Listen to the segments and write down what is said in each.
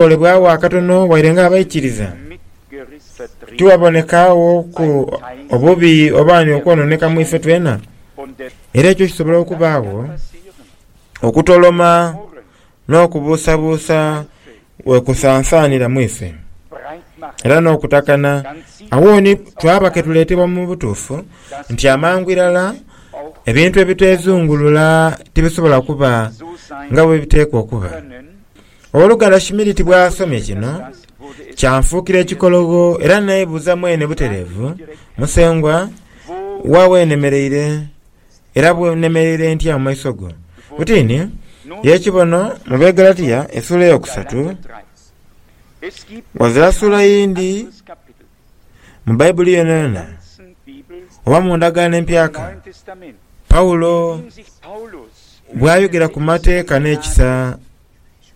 Olebwagho akatono waire nga abaikiriza, tiwabonekaagho ku obubi oba ni okwononeka mu ife twena. Era ekyo kisobola okubaagho, okutoloma n'okubuusabuusa we kusansaanira mu ife, era n'okutakana. Agho ni twaba ke tuleetebwa mu butuufu nti amangu irala ebintu ebiteezungulula tibisobola kuba nga bwe biteekwa okuba. Ogh'oluganda Schmidt bw'asomye kino, kyanfuukira ekikologho era neebuuza mwene butereevu, Musengwa, wa we nemereire, era nemereire ntya mu maiso go? Butini ye kibono mu Begalatia esuula ey'okusatu, ghazira suula yindi. Mu Baibuli yonayona oba mu Ndagaano Empyaka, Paulo bw'ayogera ku mateeka n'ekisa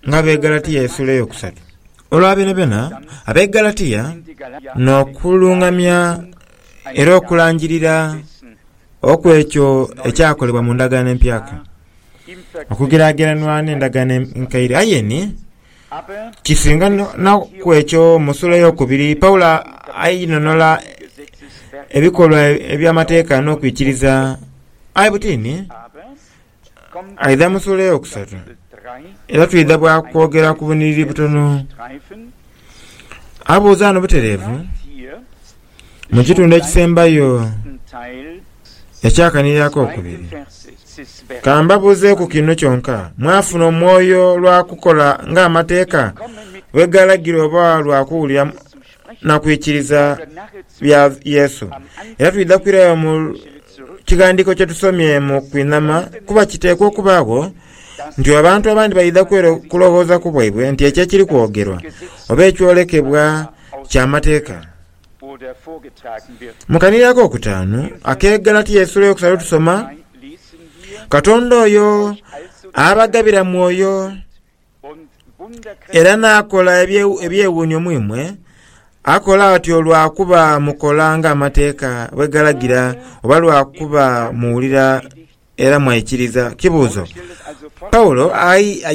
ng'Abaegalatiya esuula ey'okusatu. Olwa byonabyona, Abaegalatiya n'okulungamya era okulangirira okw'ekyo ekyakolebwa mu Ndagaano Empyaka okugeraageranwa n'Endagaano Enkaire. Aye ni Kisinga na ku ekyo, mu suula ey'okubiri Paulo ainhonhola ebikolwa eby'amateeka n'okwikiriza. Aye butini aidha mu suula ey'okusatu, era twidha bwa kwogera ku buniriri butono. Abuuza ghano butereevu. Mu kitundu ekisembayo ekyakanhiri ak'okubiri, ka mbabuuzeeku kino kyonka, mwafuna omwoyo lwa kukola ng'Amateeka bwe gaalagira oba lwa kuwulira na kwikiriza bya Yesu? Era twidha kwirayo mu kighandiiko kye tusomye mu kwinhama, kuba kiteekwa okubaagho nti abantu abandi baidha kulowoozaku bwaibwe nti ekyo ekiri kwogerwa oba ekyolekebwa kya mateeka. Mu kaniri ak'okutaanu ak'Egalatiya eisula eyokusatu tusoma, Katonda oyo abagabira mwoyo era n'akola ebyewuunyo mu imwe, akola atyo lwa kuba mukola ng'amateeka bwe galagira oba lwa kuba muwulira Era mwaikiriza kibuuzo Paulo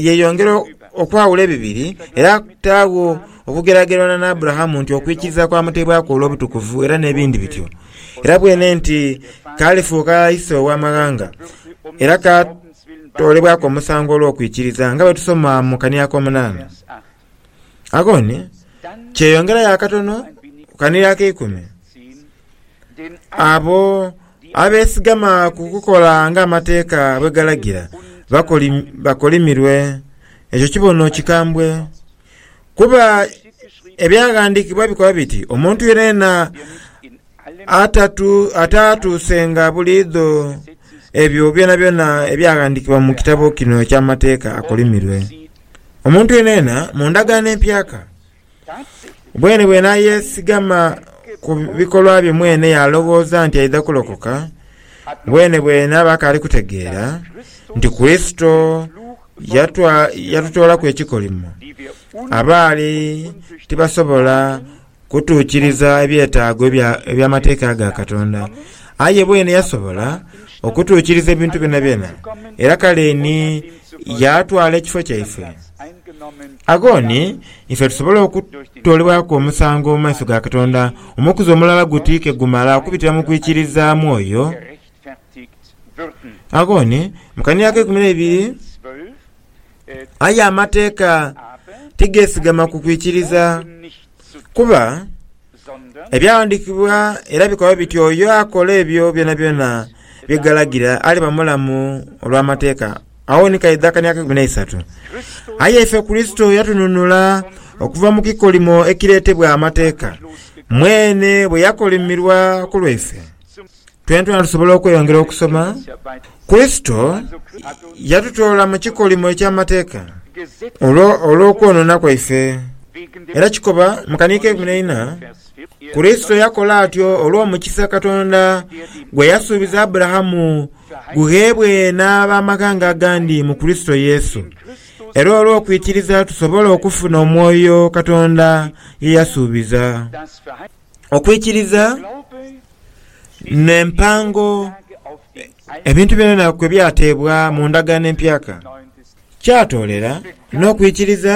yeyongera okwawula ebibiri era taagho okugeragerana n'Aburahamu nti okwikiriza kwamuteebwaku olw'obutukuvu era n'ebindi bityo. Era bwene nti kaalifuuka ise ow'amaghanga era kaatoolebwaku omusango olw'okwikiriza nga bwe tusoma mu kani ak'omunaana. Agoni kyeyongerayo akatono ku kaniro akeikumi. Abo abeesigama ku kukola ng'amateeka bwe galagira bakolimirwe. Ekyo kibono kikambwe, kuba ebyaghandiikibwa bikoba biti, Omuntu yenayena ataatuusenga buliidho ebyo byonabyona ebyaghandiikibwa mu kitabo kino eky'amateeka akolimirwe. Omuntu yeenayeena mu ndagaano empyaka, bweene bw'enaayeesigama ku bikolwa bye mweene yaalowooza nti aidha kulokoka, bweene bw'enaaba akaali kutegeera nti Kurisito yatutoolaku ekikolimo, abaali tibasobola kutuukiriza ebyetaago eby'Amateeka ga Katonda, aye bwene yasobola okutuukiriza ebintu byonabyona, era kale ni yaatwala ekifo kyaife. Agho ni ife tusobola okutoolebwaku omusango mu maiso ga Katonda, omukuzi omulala guti ke gumala okubitira mu kwikiriza mwoyo. Agho ni mu kaneya ak'eikumi n'eibiri. Aye amateeka tigeesigama ku kwikiriza, kuba ebyawandiikibwa era bikoba biti oyo akola ebyo byonabyona bye galagira aliba mulamu olw'amateeka. Agho ni kaidho akani ak'eikumi n'eisatu. Aye ife Kurisito yatununula okuva mu kikolimo ekireetebwa amateeka, mwene bwe yakolimirwa ku lwaife. Twenatwena tusobola okweyongera okusoma, Kurisito yatutoola mu kikolimo eky'amateeka olw'okwonoona kwaife. Era kikoba mu kani k'eikumi n'eina, Kurisito yakola atyo olw'omukisa Katonda gwe yasuubiza Aburahamu gugheebwe n'ab'amaghanga agandi mu Kurisito Yesu. Era olw'okwikiriza tusobola okufuna omwoyo Katonda ye yasuubiza. Okwikiriza n'empango ebintu byonabyona kwe byateebwa mu ndagaano empyaka kyatoolera n'okwikiriza.